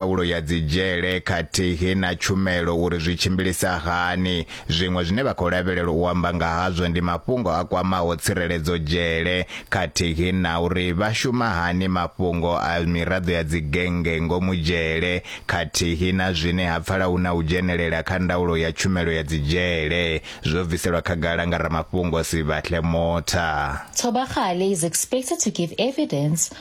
ndaulo ya dzidzhele khathihi na tshumelo uri zwi tshimbilisa hani. Zwiṅwe zwine vha khou lavhelela u amba nga hazwo ndi mafhungo a kwamaho tsireledzo dzhele khathihi na uri vha shuma hani mafhungo a miraḓo ya dzigennge ngomu dzhele khathihi na zwine ha pfala hu na u dzhenelela kha ndaulo ya tshumelo ya dzidzhele, zwo bviselwa khagala nga ramafhungo Sibahle Motha. Tshobagale is expected to give evidence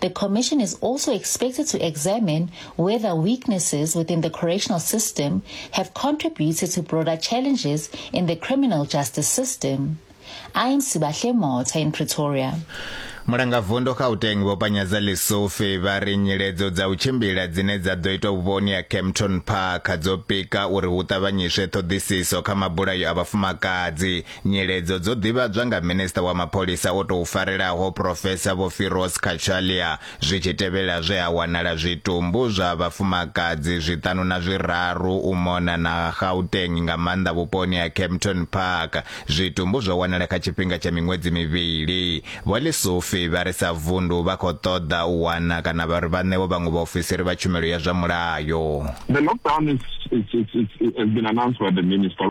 The Commission is also expected to examine whether weaknesses within the correctional system have contributed to broader challenges in the criminal justice system. I am Sibahle Mota in Pretoria. mulangavundu gauteng vho panyadza lisufi vha ri nyiledzo dza u tshimbila dzine dza ḓo itwa vhuponi ya campton park dzo pika uri hu ṱavhanyiswe ṱhoḓisiso kha mabulayo a vhafumakadzi Nyeledzo dzo ḓivhadzwa nga Minisiṱa wa Mapholisa o tou farelaho Professor Vho Firoz Cachalia zwi tshi tevhela zwe ha wanala zwitumbu zwa vhafumakadzi zwiṱanu na zwiraru u mona na Gauteng nga maanḓa vhuponi ha Kempton Park. Zwitumbu zwo wanala kha tshifhinga tsha miṅwedzi mivhili. Vho Lesufi vha ri sa vundu vha khou ṱoḓa u wana kana vha ri vha ṋewe vhaṅwe vhaofisiri vha tshumelo ya zwa mulayo. The lockdown is, is, is, is, has been announced by the minister.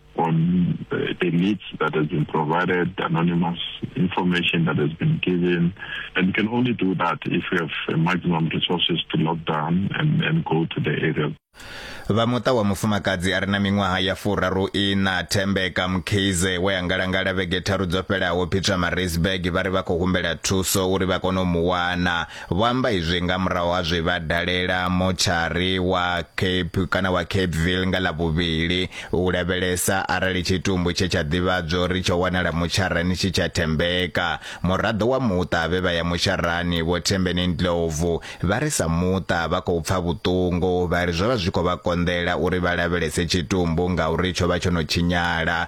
on uh, the leads that has been provided, anonymous information that has been given. And we can only do that if we have maximum resources to lock down and, and go to the area. vha muṱa wa mufumakadzi a re na miṅwaha ya furaru ina thembeka mkhize we a ngalangala vhege tharu dzo fhelaho peter marisburg vha ri vha khou humbela thuso uri vha kone u mu wana Vho amba izwi nga murahu ha zwe vha dalela motshari wa Cape kana wa Capeville nga ḽa vhuvhili u lavhelesa arali tshitumbu tshe tsha ḓivhadzwa uri tsho wanala motsharani tshi tsha thembeka. Muraḓo wa muṱa vhe vha ya mosharani Vho Thembeni Ndlovu vha ri sa muṱa vha khou pfa vhuṱungu vha ri zwo vha zwi khou vha konḓela uri vha lavhelese tshitumbu ngauri tsho vha tsho no tshinyala.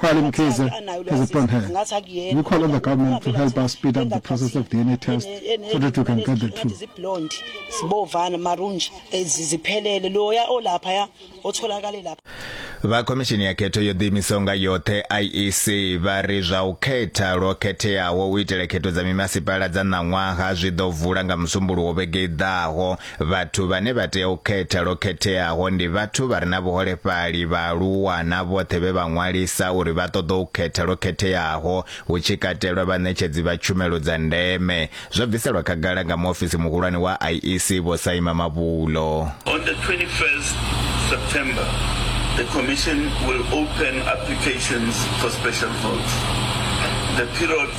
While in KZN has a plan here, we call on the government to help us speed up the process of DNA tests so that we can get the truth. vha khomishini ya khetho yo ḓiimisaho nga yoṱhe iec vha ri zwa u khetha lwo khetheaho u itela khetho dza mimasipala dza ṋaṅwaha zwi ḓo vula nga musumbuluwo vhege i ḓaho Vhathu vhane vha tea u khetha lwo khetheaho ndi vhathu vha re na vhuholefhali, vhaaluwa na vhoṱhe vhe vha ṅwalisa uri vha ṱoḓa u khetha lwo khetheaho, hu tshi katelwa vhaṋetshedzi vha tshumelo dza ndeme, zwo bviselwa khagala nga muofisi muhulwane wa IEC Vho Saima Mabulo. On the 21st September, the Commission will open applications for special votes. The period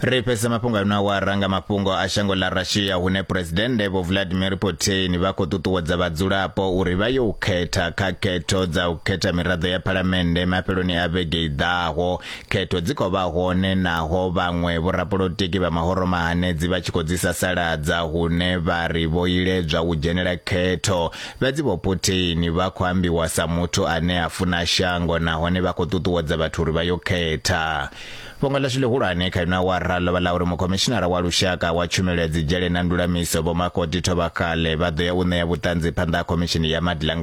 ri fhedzisa mafhungo ano awara nga mafhungo a shango ḽa russia hune phuresidennde vho vladimir putin vha khou ṱuṱuwedza vhadzulapo uri vha yo u khetha kha khetho dza u khetha miraḓo ya phalamennde mafheloni a vhege i ḓaho khetho dzi khou vha hone naho vhaṅwe vhorapolotiki vha mahoro mahanedzi vha tshi khou dzi sasaladza hune vha ri vho iledzwa u dzhenela khetho fhedzi vho putin vha khou ambiwa sa muthu ane a funa shango nahone vha khou ṱuṱuwedza vhathu uri vha yo khetha Fhungo ḽashu ḽihulwane kha ino awara ḽo vha ḽa uri Mukhomishinara wa Lushaka wa Tshumelo ya Dzidzhele na Ndulamiso, Vho Makgoti Thobakgale, vha ḓo ya u ṋea vhuṱanzi phanḓa ha Khomishini ya Maḓi ḽa nga